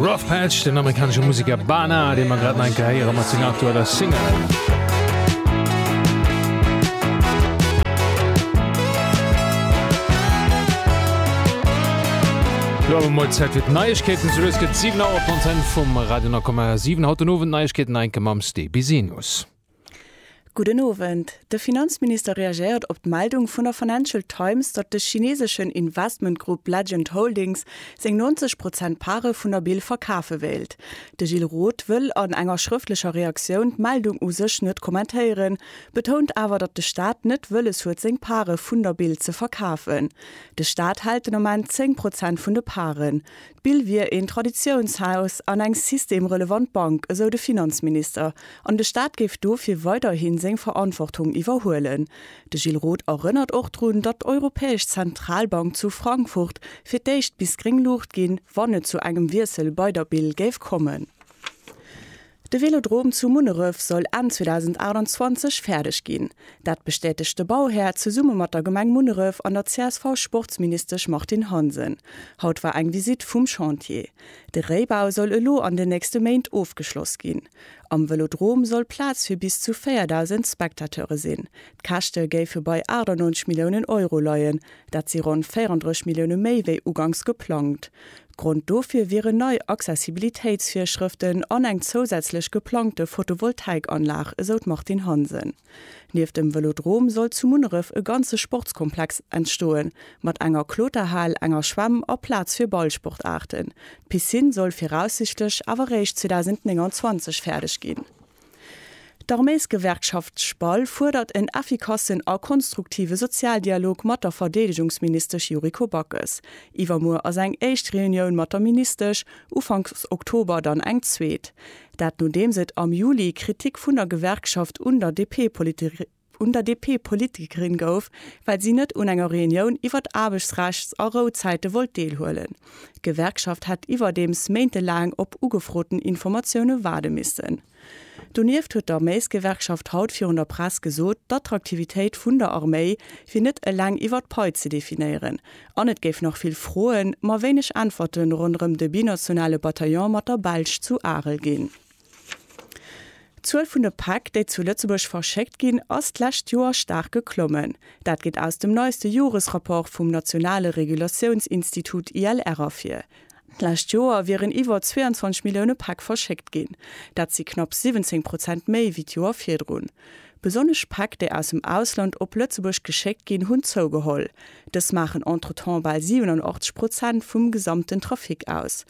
Rough Patch, den amerikanesche Musiker Bana, dee man grad enke héiere mat seng aktueller Single. Lo mol Zäit fir d'Neiegkeeten, sou es gëtt 7 Auer Fontaine vum Radio 9,7. Haut den Owend Neiegkeeten enke mam Sté Bisinus. Gudden Owend. De Finanzminister reagéiert op d'Meldung vun der Financial Times, datt de chineseschen Investmentgrupp Legend Holdings seng 90 Prozent Pare vun der Bill verkafe wéilt. De Gilles Roth wëll an enger schrëftlecher Reaktioun d'Meldung u sech net kommentéieren, betount awer, datt de Staat net wëlles huet seng Pare vun der Bill ze verkafen. De Staat hält den Ament 10 Prozent vun de Paren. D'Bill wier een Traditiounshaus an eng systemrelevant Bank, esou de Finanzminister, an de Staat géif dofir weiderhi seng Verantwortung iwwerhuelen. De Gilles Roth erënnert och drun, datt d'Europäesch Zentralbank zu Frankfurt fir d'éischt bis gréng Luucht ginn, wann et zu engem Wiessel bei der Bill géif kommen. De Vélodrom zu Munneref soll Enn 2028 fäerdeg ginn. Dat bestätegt de Bauhär zesumme mat der Gemeng Munneref an der CSV-Sportsministesch Martine Hansen. Haut war eng Visitt vum Chantier. De Réibau soll elo an den nächste Méint ofgeschloss ginn. Am Vélodrom soll Plaz fir bis zu 4.000 Spectateure sinn. D'Käschte géife bei 98 Milliounen Euro leien. Dat si ronn 34 Millioune méi wéi ugangs geplangt. Grond dofir wieren nei Accessibilitéitsvirschrëften an eng zousätzlech geplangte Photovoltaikanlag, esou d'Martine Hansen. Nieft dem Vëlodrom soll zu Munneref e ganze Sportskomplex entstoen, mat enger Kloterhal, enger Schwämm a Plaz fir Ballsportaarten. D'Piscine soll viraussichtlech awer réischt 2029 fäerdeg ginn. D'Arméisgewerkschaft SPAL fuerdert en effikassen a konstruktive Sozialdialog mat der Verdeedegungsministesch Yuriko Backes. Iwwermuer ass eng éischt Reunioun mat der Ministesch, ufanks Oktober dann eng zweet. Dat nodeems et am Juli Kritik vun der Gewerkschaft un der DP-Politikerin, un der DP-Politikerin gouf, well si net un enger Reunioun iwwert Aarbechtsrechts a Rouzäite wollt deelhuelen. D'Gewerkschaft hätt iwwerdeems méintelaang op ugefroten Informatioune waarde missen. Donieft huet d'Arméisgewerkschaft haut virun der Press gesot, d'Attraktivitéit vun der Arméi wier net eleng iwwer d'Pai ze definéieren an et géif nach vill Froen, ma wéineg Äntwerte ronderëm de binationale Bataillon mat der Belsch zu Arel ginn. D'Zuel vun de Päck, déi zu Lëtzebuerg verschéckt ginn, ass d'lescht Joer staark geklommen. Dat geet aus dem neiste Joresrapport vum nationale Regulatiounsinstitut ILR ervir. D'lescht Joer wieren iwwer 22 Millioune Päck verschéckt ginn. Dat si knapp 17 Prozent méi wéi d'Joer virdrun. Besonnesch d'Päck, déi aus dem Ausland op Lëtzebuerg geschéckt ginn, hunn zougeholl. Dës maachen entretemps bal 87 Prozent vum gesamten Trafic aus.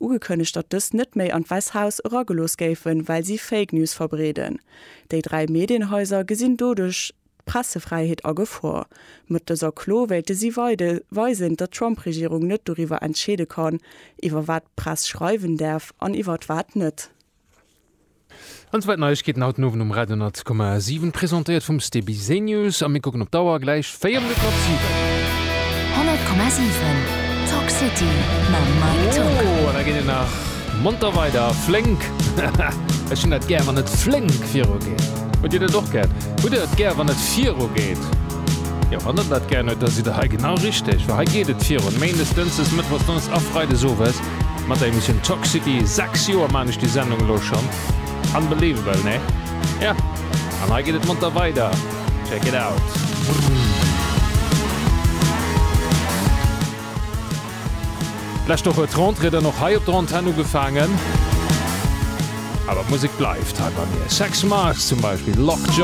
Ugekënnegt, datt dës net méi an d'Wäss Haus eragelooss géifen, well si Fake News verbreeden. Déi dräi Medienhaiser gesinn doduerch d'Pressefräiheet a Gefor. Mat dëser Klo wéilte si weide weisen, datt d'Trump-Regierung net doriwwer entscheede kann, iwwer wat d'Press schreiwen däerf an iwwer wat net. An zwar d'Neiegkeeten haut den Owend um Radio 100,7, presentéiert vum Stebi Zenius. A mir kucken op d'Auer, gläich 4 Minutt mat 7. 100,7 Talk City mam Mike Tock. Oh, an da geet et nach monter weider, flénk. Ech hunn dat gär, wann et flénk virugeet. Hutt Dir dat och gär? Hutt Der et gär, wann et virugeet? Jo, wann Der dat gär hutt, da sidd Der hei genau richteg, well hei geet et virun, méindes, dënschdes, mëttwochs, donneschdes a freides owes. Mat der Emissioun Talk City, 6 Joer man ech déi Sendung elo schon. Unbelievable, nee? Ja, an hei geet et monter weider. Check it out! D'lescht Woch huet d'Rentrée dann och hei op der Antenn ugefaangen. Awer d'Musek bleift hei bei mir. Sex Mars zum Beispill, Lock Jaw.